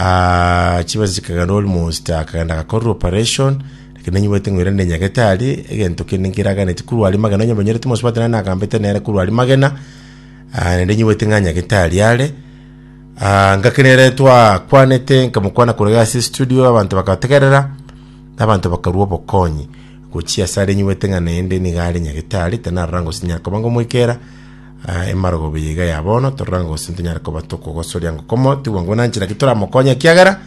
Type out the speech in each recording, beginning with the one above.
Ah, chibesa chikagana almost akagenda agakorerwa operation lakini nanyibwete ng'oira ne nyagetari egento kende nkeraganeti korwa aria magena onye banyerete mosubati nari nagambete nere korwa aria magena ah, naende nyibwete ng'a nyagetari are ah, ngakenere twakwanete nkamokwana korega ase studio abanto bakategerera abanto bakarua obokonyi gochia ase are nyibwete ng'a naende niga are nyagetari tanarora ngose nyara koba ngomoikera Aa, emarogoba eye iga ya bono, torora ng'a gose ntonyare koba tokogosoria ngoko motigwa ngwo na nchera ki toramokonye, ekiagera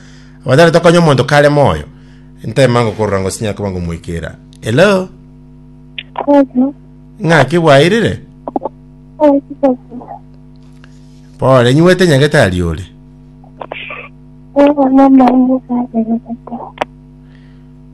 abanyare tokonya omonto kare moyo. Ntema ngoko orora ngose nyare koba ngomoikera. Hello? Hello. Ng'aki bwairire? Ai, sasa. Pole, nywete nyagetari ore. Wewe mama wangu kazi ya tata.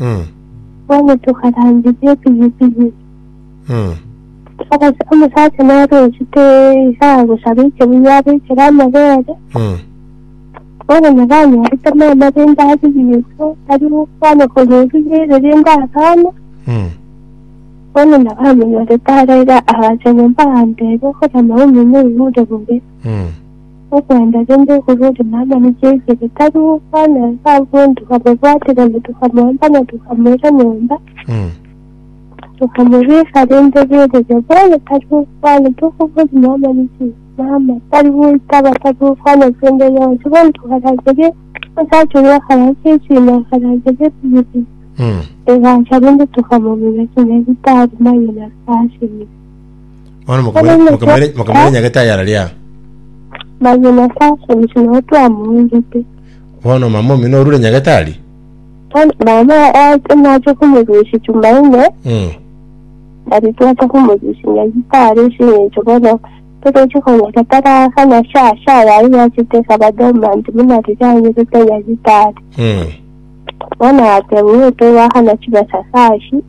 Mm. Bono tokarangeria epigipigi. Mm. Omosa- Omosacha nare ochete iga agosaba ekebuya abekere amabere. Mm. Bono nabo anyorete mama rende arie Yeso aria gokwana korwa ebuya ere rende akana. Mm. Bono nabo amonyorete araira agacha nyomba agamteebia, Okorama omenye oigure bobe. Mm. Okwenda rende oborori na amani Jesu ritari gokwana ase abanto ababwate gane tokamoamba na tokamoira nyomba, tokamobisa rende rigereria bono tari gokwana tokobori na amani Jesu, mama, tari goitaba tari gokwana kende yonsi bono tokarangerie omosacha oria okaransa esino akarangeria ebibe egacha rende tokamomenya kinya ritari mayo na ase asebire. Bono mokamanya Bono mokamanya Nyasaye- mokamanya nyagete ayara ria. Naye Nyasaye asabisi nao twamoonchete. Bono mama omino orure nyagete ari. Bono mama oache nache komorusia Tumaine, Mm. nari twacha komorusia Nyagita are ase eng'encho bono toroche konyora taraka na shasha yaye yachete ekaba dormant buna riria anyerete Nyagita are. Mm. Bono agateba ng'o tobaakana chibesa kashi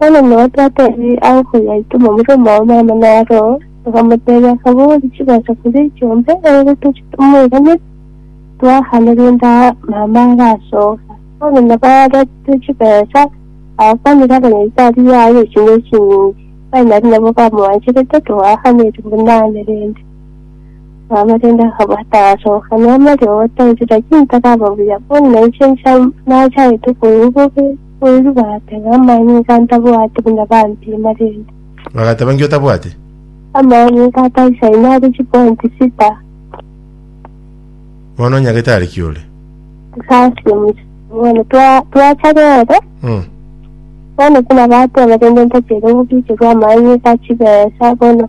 Bono nao twatebie agokonya aitwe momura omwabo Maama na Aroo, bakamotebia, Akabori chigocha koria ichombe, erere toche tomoiranere, toakane rende aa Maama arasoka. Bono nabo aretire chibesa, aakwanire abanyaikari baye eching'o echinyinge, baye nario nabo bamwancherete, toakaneti buna ane rende. Maama rende akaba tarasoka nemerio gotensi, lakini taraba buya, bono nainche ncha- nachaete koigwa bobe. Korende bagateba, Amaani iga ntabwate buna bampima rende. Bagateba, Nki otabwate? Amaani iga ataisaine are chiponti sita. Bono onyagete are ki ore? Asasi omochenu. Bono twa- twacha rero, Mm. bono tinabateba rende ntachere gobicherwa amaani iga chibesa, bono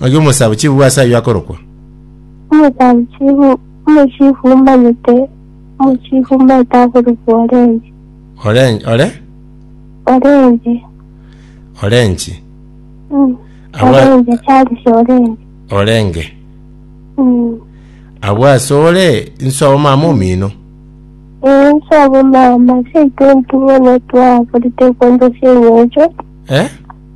Ng'aki omosabichibu ase ayio akorokwa? Omosabichibu, omochifu omanyete, omochifu omanyete akorokwa Orenji. Oren, ore? Orenji. Orenji. Mm. Abwa- Orenji, Charles Orenji. Orenge. Mm. Abwo ase ore, inso omama omino. Ee, nsobo mama, seito ntung'ene twakorete kondosia eng'encho. Eh?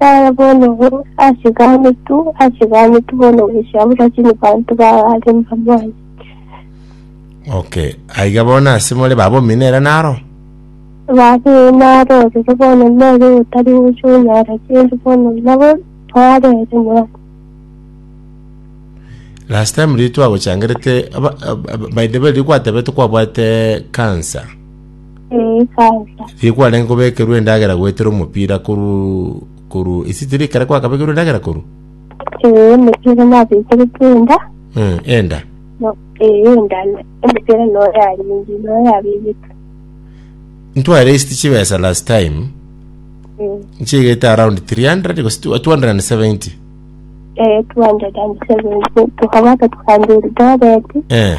Yaya bono bo, achigane tu, achigane tu bono ogosiabora chini banto b'abaare mbamwanye. Okay. Aiga bono ase more babombi nere naro. Babe naro ororo bono nere otari gocha onyara chindi bono nabo twarere mwana. Last time riria twagochangerete aba- ab- ab- by the way riria gwatebete kwabwate cancer. Ee, sasa. Riria kwarenge kobekerwa endagera goetera omopira koru koru isi tiri ekero kwakabekerwa endagera koru Ee, omopira nabekerete enda. Mm, enda No, ee, enda. na- Omopira no yaringi, no yabegete. ntwaresti chibesa last time Ee. nchigete around 300 gose 270 Eh, 270 tukabata tukandiri dobeti eh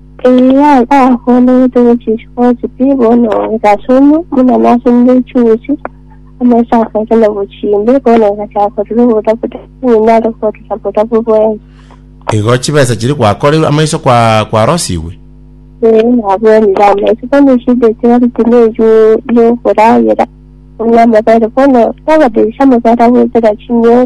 Eria gakoorete gochicha gochiki bono gasomwe, buna nasomire echiusi, amaiso akacha na bochimbe, bono gachaka korora obotabotabu, ng'ina are korora botabu bwensi. Igo chibesa chiri gwakoreirwe amaiso kwa kwarosigwe. Ee, nabwenire amaiso, bono eshida echari tineyo yokoragera, buna amabere, bono nabadirisha amabere agoetera chinyoro.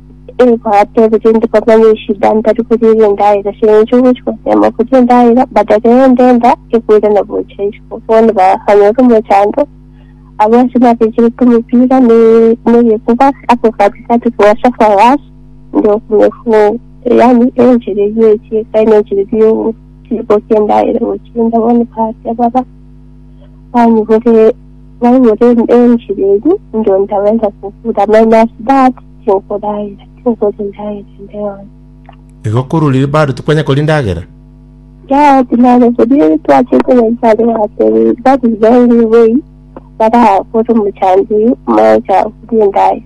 Egoate gose ndikomanya eshida ntari koria ere endaera ase eng'encho ogochia gotema koria endaera badare ende enda egoirana gocha isiko bono bakanyora omochando abwo ase nabechirete omopira ne negekuba ako katikati kwa sofa was nde okomefu yani enchera eyio echiekaine enchera eyio chibokia endaera gochinda bono kare baba bainyorire bainyorire enchiri eyio, inche ntaweza kobura minus that tinkoraira tinkoria endagera ende yonsi. Igo korwa riria bado tikwenya koria endagera? Yao tinare koria twachete Yesu aria yatebire that is the only way barakore omochango oyio mocha koria endagera.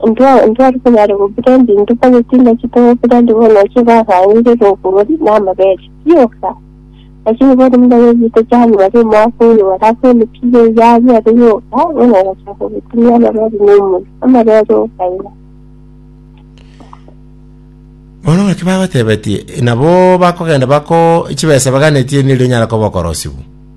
Ntwari konyara gokira ebinto kw'egetinda kitogokira ndi bono ekio bagang'ire n'oborori n'amabere. Rioka, naki bori buna bebite chani bari omwaka oyo barakwenikirie eyabia ere yoka, bono ogachaka gotumia amarori n'omori, amarori okaira. Bono ng'aki bagotebetie, nabo bakogenda bako chibesa baganetie nirio nyare koba okorosiwa.